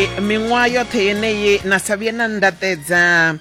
miṅwaha yoṱhe yeneyi na sa vhuye na ndaṱedza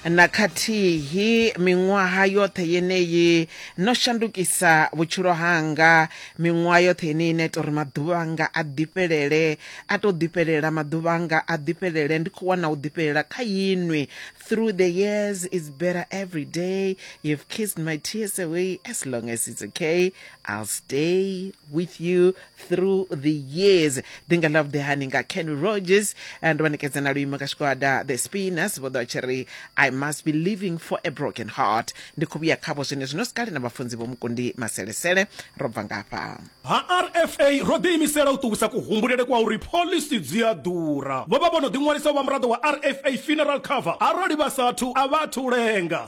na khathihi miṅwaha yoṱhe yeneyi no shandukisa vhutshilo hanga miṅwaha yoṱhe yeneyi na ita uri maḓuvha anga a ḓifhelele a to ḓifhelela maḓuvha anga a ḓifhelele ndi khou wana u ḓifhelela kha inwi through the years is better every day you've kissed my tears away as long as it's okay i'll stay with you through the years ndi nga love the honey nga ken rogers eh, ndo vha ṋekedza na luimo nga tshigwada the spinners vho ḓo tshi ri i must be living for a broken heart ndi khou vhuya khavho zwine zwino sikale na vhafunzi vho mukundi maselesele ro bva ngafha ha rfa ro ḓiimisela u ṱuwisa kuhumbulele kwa uri phoḽisi dzi a ḓura vho vha vho no ḓiṅwalisa u vha muraḓo wa rfa funeral cover arali vha sathu a vha athu lenga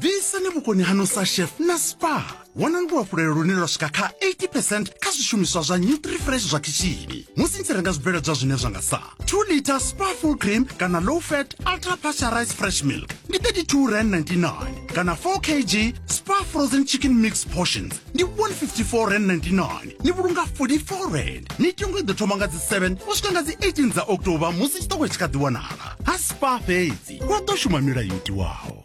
ḓisani vhukoni hanu sa chef na spa wanani luhafhulelo lune lwa swika kha 80 percent kha zwishumiswa zwa nutrifresh zwa khishini musi ni tshi renga zwibveledzwa zwine zwa nga sa 2 liter spa full cream kana low fat ultra pasteurized fresh milk ndi 32 rand 99 kana 4 kg spa frozen chicken mix portions ndi 154 rand 99 ni vhulunga 44 rand mitengo i ḓo thoma nga dzi 7 u swika nga dzi 18 dza october musi tshiṱoko tshi kha ḓi wanala ha spa fhedzi wa ḓo shuma milayo itiwaho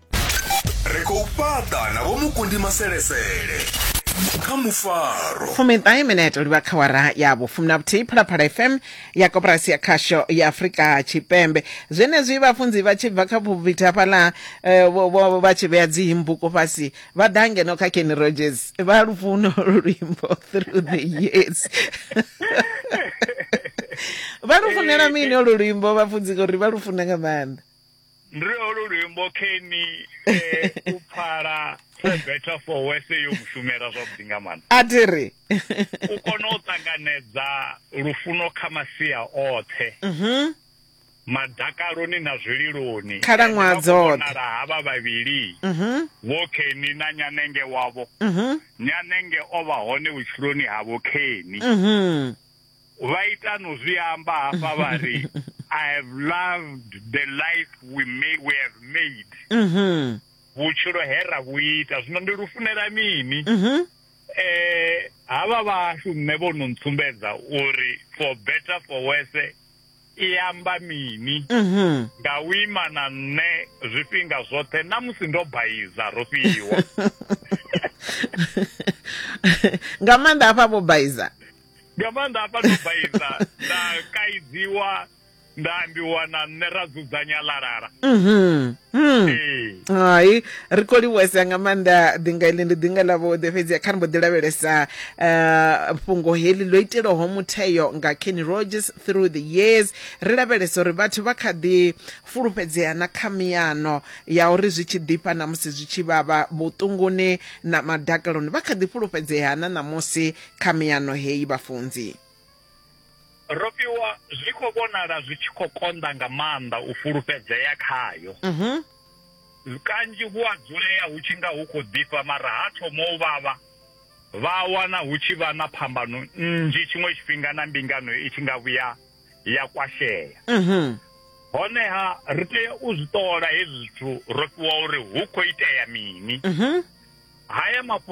ri khou fhaṱa na vhomukundi maselesele kha mufaro fumiṱahe minete livha kha wara ya vhufumi na vhuthihi phalaphala fm ya koporasi ya khasho ya afurika tshipembe zwenezwi vhafunzi vha tshi bva kha vhubvita hafhaḽa eh, vho- vho- vha tshi vhea dzimbuko fhasi vha ḓa ngeno kha kenny rogers vha lufuno luimbo through the years vha lufunela mini olu luimbo vhafunzi ngori vha lufuna nga maanḓa ndi lwe holo luimbo keni eh, u pfala for better for worse yo mushumela zwavhuḓi nga maanḓa a thi ri u kona u ṱanganedza lufuno kha masia oṱhe mhm. madakaloni na zwililoni Khalaṅwaha dzoṱhe. vhonala havha vhavhili Mhm. vho keni na nyanenge wavho Mhm. nyanenge o vha hone vhutshiloni ha vho keni Mhm. vha ita no zwi amba hafha vha ri i have loved the life we may we have made mhm vhutshilo he ra vhu ita zwino ndi lufunela mini mhm eh havha vhashu nṋe vho no ntsumbedza uri for better for worse i amba mini mhm nga u ima na nṋe zwifhinga zwoṱhe na musi ndo baiza ro fhiwa nga maanḓa hafha vho baiza nga maanḓa hafha ndo baiza nda kaidziwa nda ambiwa na nṋe ra dzudzanya lalala mhm. Hmm. hai ri khou livhuwesa nga maanḓa ḓinga iḽi ndi ḓinga ḽa vhuḓe fhedzi kha ri mbo ḓi lavhelesa um fhungo heḽi ḽo itelwaho mutheo nga kenny rogers through the years ri lavhelesa uri vhathu vha kha ḓi fulufhedzea na kha miyano ya uri zwi tshi ḓifha na musi zwi tshi vhavha vhuṱunguni na madakaloni vha kha ḓi fulufhedzea na ṋamusi kha miyano heyi vhafunzi ro fhiwa zwi khou vhonala zwi tshi khou konḓa nga maanḓa u fulufhedzea khayo mhm. kanzhi hu a dzulea hu tshi nga hu khou ḓifha mara ha thoma u vhavha vha wana hu tshi vha na phambano nnzhi tshiṅwe tshifhinga na mbingano i tshi nga vhuya ya kwashea mhm. honeha ri tea u zwi ṱola hezwi zwithu ro fhiwa uri hu khou itea mini mhm. haya mafhungo